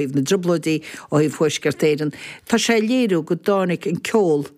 thaobh na dTrioblóidí ó thaobh Thuaisceart Éireann, tá sé ag léiriú go dtáinig an ceol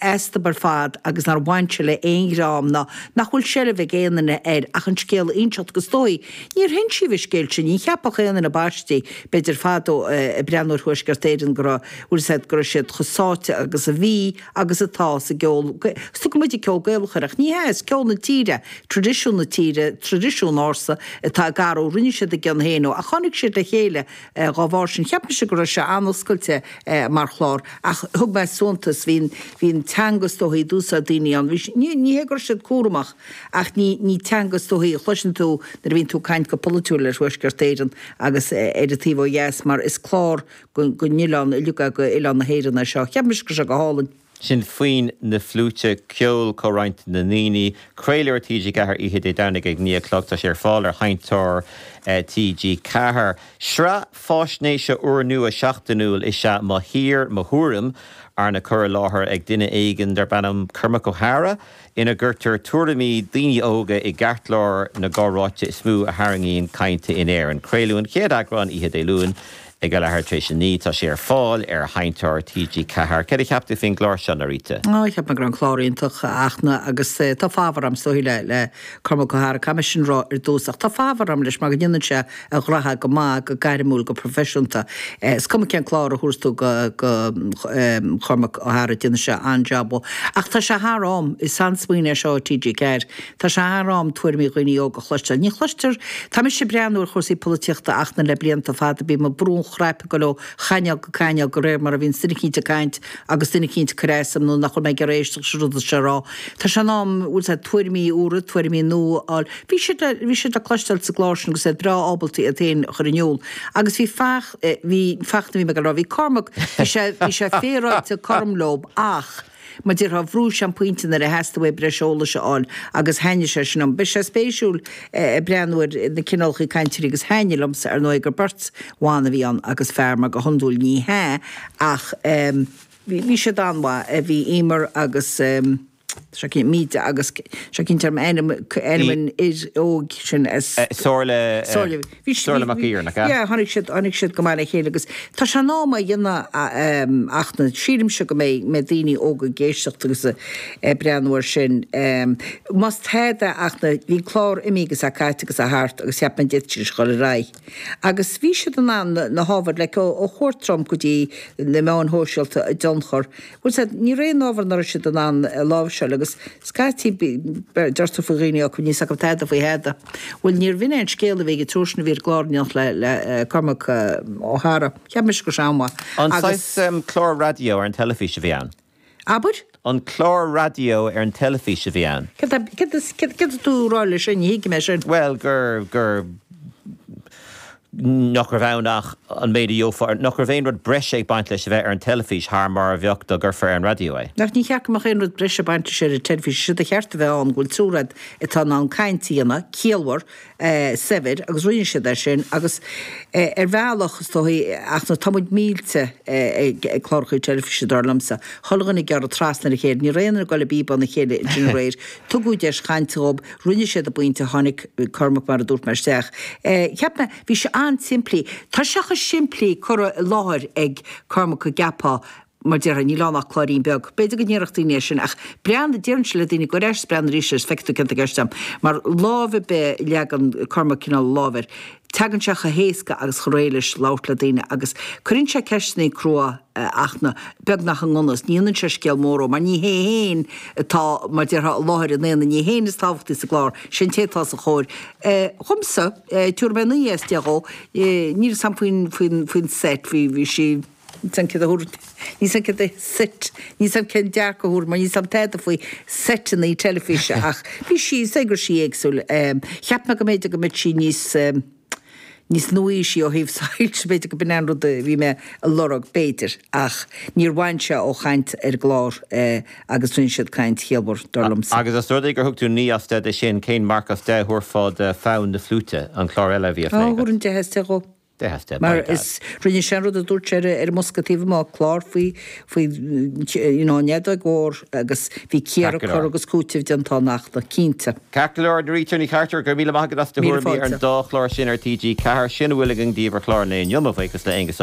astub ar fad agus nár bhain sé le aon dream ná nach bhfuil seilbh ag aon duine air ach an scéal a inseacht is dóichí. Níor hinsíodh an scéal sin, ní cheapfadh aon duine baistí, b'fhéidir fadó, ag breathnú ar Thuaisceart Éireann go raibh, bhfuil a fhios agat, go raibh siad chomh sáite agus a bhí, agus atá sa gceol Gaelach. Tugann muid an ceol Gaelach air, ach ní hea, is ceol na tíre, traidisiún na tíre, traidisiún ársa atá, gur rinne siad a gcion féin ó, ach tháinig siad le chéile dá bharr sin. Cheap mise go raibh sé an-oscailte mar chlár, ach thug mé suntas, bhí an teanga is dóichí a d'úsáid daoine ann, bhí, ní hé go raibh siad cúramach, ach ní, ní teanga is dóichí a chloiseann tú nuair a bhíonn tú ag caint go polaitiúil ar Thuaisceart Éireann agus ar an taobh ó dheas, mar is clár don oileán uilig, a, oileán na hÉireann é seo. Cheap mise go raibh sé go hálainn. Sin foinn na fliúite, ceol comhroinnte na ndaoine. Craoladh ar TG4 oíche Dé Domhnaigh ag 9 a chlog. Tá sé ar fáil ar sheinnteoir TG4. Sraith fáisnéise úrnua seachtainiúil is ea Mo Thír, Mo Thuairim, arna cur i láthair ag duine éigin darb ainm Cormac Ó hEadhra, ina gcuirtear tuairimí daoine óga i gceartlár na gcomhráite is mó a tharraingíonn caint in Éirinn. Craoladh an chéad eagrán oíche Dé Luain. Ag a leathuair tar éis a naoi tá sé ar fáil ar sheinnteoir TG4. Céard a cheap tú faoin gclár seo, Norita? Ó, cheap mé go raibh an clár iontach, a Fhachtna, agus tá fabhar agam, is dóichí, le, le Cormac Ó hEadhra, caithfidh mé é sin a rá ar dtús, ach tá fabhar agam leis mar go ndéanann sé a ghraithe go maith, go gairmiúil, go proifisiúnta. Is cuma cén clár a thabharfaidh tú do, do Chormac Ó hEadhra déanann sé an-job. Ach tá sé thar am, is an-smaoineamh é seo ó TG4, Tá sé thar am tuairimí dhaoine óga a chloisteáil. Ní chloistear. Tá mise ag breathnú ar chúrsaí polaitíochta, a Fhachtna, le blianta fada, bíonn mé ag brú an chnaipe ag dul ó chainéal go cainéal de réir mar a bhíonns duine eicínt ag caint agus duine eicínt ag cur as dom nach bhfuil mé ag iarraidh éisteacht leis an rud atá sé a rá. Tá sé in am bhfuil a fhios agat, tuairimí úra, tuairimí nua a fháil. Bhí siad le, bhí siad le cloisteáil sa gclár sin agus iad breá ábalta iad féin a chur in iúl. Agus bhí Fach, bhí, Fachtna a bhí mé ag rá, bhí Cormac, bhí sé, bhí sé féaráilte cothrom leob ach, Mar a déarfá bhrú sé an pointe nuair a theastaigh uaidh breis eolais a fháil agus thaitnigh sé sin liom. Beidh sé spéisiúil ag breathnú ar na cineálachaí cainteoirí agus thaitnigh liomsa ar ndóigh gur beirt bhan a bhí ann agus fear mar go hiondúil ní hea ach bhí bhí siad an-mhaith. Bhí Eimear agus seo cinnte Míde agus seo cinnte ar m'ainm ainm an fhir óig sin as Somhairle. Bhí siad, Somhairle Mag Uidhir, nach ea, yeah, tháinig siad, tháinig siad go maith le chéile agus tá sé in am é a dhéanamh a, em, a Fhachtna, sílimse go mbeidh, mbeidh daoine óga ag éisteacht agus a, ag breathnú ar sin. Em, más tada é, a Fhachtna, bhí an clár imithe agus é caite agus é thart agus cheap mé d'fhéadfadh siad a ghoil ar aghaidh. Agus bhí siad in ann na, na hábhair, like ó, ó chuairt Trump go dtí na meáin shóisialta a dtionchar, Bhuel, sea, ní raibh aon ábhar ná raibh siad in ann a láimhseáil agus scaití deir tú faoi dhaoine, Ó, níl 's acu tada faoi thada. Bhuel, níorbh in é an scéal a bhí ag an triúr sin a bhí ar an gclár in éineacht le Cormac Ó hEadhra. Cheap mise go raibh sé an-mhaith agus. An saghas clár raidió ar an teilifís a bhí ann? Abair? An clár raidió ar an teilifís a bhí ann? Cad tá, cad is, cad, cad tá tú a' rá leis sin, ní thuigim é sin. Bhuel, gur, gur, nach raibh ann ach an méid a gheofá ar, nach raibh aon rud breise ag baint leis a bheith ar an teilifís thar mar a bheadh dá gcuirfeá ar an raidió é. Nach ní cheart go mbeadh aon rud breise ag baint leis ar an teilifís, séard ba cheart a bheith ann go bhfuil triúr a'd atá in ann caint a dhéanamh, ciallmhar, saibhir, agus rinne siad é sin, agus ar bhealach, is dóigh, a Fhachtna, tá muid millte ag clárachaí teilifíse, dar liomsa, chuile dhuine ag gearradh trasna ar a chéile, ní raibh aon duine ag dul i bpíobán a chéile ansin aréir, Tugadh deis chainte dhób, rinne siad a bpointe, tháinig Cormac mar a dúirt mé isteach. Cheap mé, bhí sé an-simplí, tá sé chomh simplí curtha i láthair ag Cormac go gceapfá, mar déarfá, níl ann ach cláirín beag. B'fhéidir go ndéarfadh daoine é sin, ach breathnaigh, a déarfainnse le daoine, gabh ar ais 's breathnaigh arís agus feicfidh tú céard atá i gceist a'm, mar ábhar ar bith a leagann Cormac cineál a lámh air. Tagann sé chomh héasca agus chomh réidh leis labhairt le daoine agus cuireann sé ceisteannaí crua a Fhachtna, beagnach i ngan fhios, ní dhéanann sé scéal mór dhó mar ní hé féin atá mar déarfá i lár an aonaigh, ní hé féin is tábhachtaí sa gclár, sé an té atá os a chomhair é. Dhomsa, tiúrfaidh mé naoi as deich dhó, níl 's a'm faoin, faoin, faoin set, bhí, bhí sí. níl 's a'm céard a thiúr, níl 's a'm céard a seit, níl 's a'm cén marc a thiúrfainn mar níl 's a'm tada faoi seiteannaí teilifíse ach bhí sí, is dóigh go raibh sí éagsúil. Cheap mé go mb'fhéidir go mbeadh sí níos, níos nua-aoisí ó thaobh soilse, b'fhéidir go b'in an rud a bhí mé a lorg, b'fhéidir, ach níor bhain sé ó chaint ar an gclár agus rinne siad caint chiallmhar, dar liomsa. Agus os rud é gur thug tú 9 as 10 dó sin, cén marc as 10 a thabharfá do Fonn na Fliúite, an clár eile a bhí á phlé agat? Thabharfainn 10 as 10 dhó. Mar is, rinne sé an rud a dúirt sé ar an mbosca taobh amuigh, clár faoi, faoi, you know, an fheadóg mhór agus bhí cíoradh, Ceart go leor. cur agus cúiteamh déanta ann a Fhachtna, cinnte. Ceart go leor, Norita Ní Chartúir, go raibh míle maith agat as do Míle thuairimí ar an fáilte. dá chlár sin ar TG4. Sin a bhfuil againn daoibh ar chlár an lae inniu, mo bhuíochas le Aengus Ó.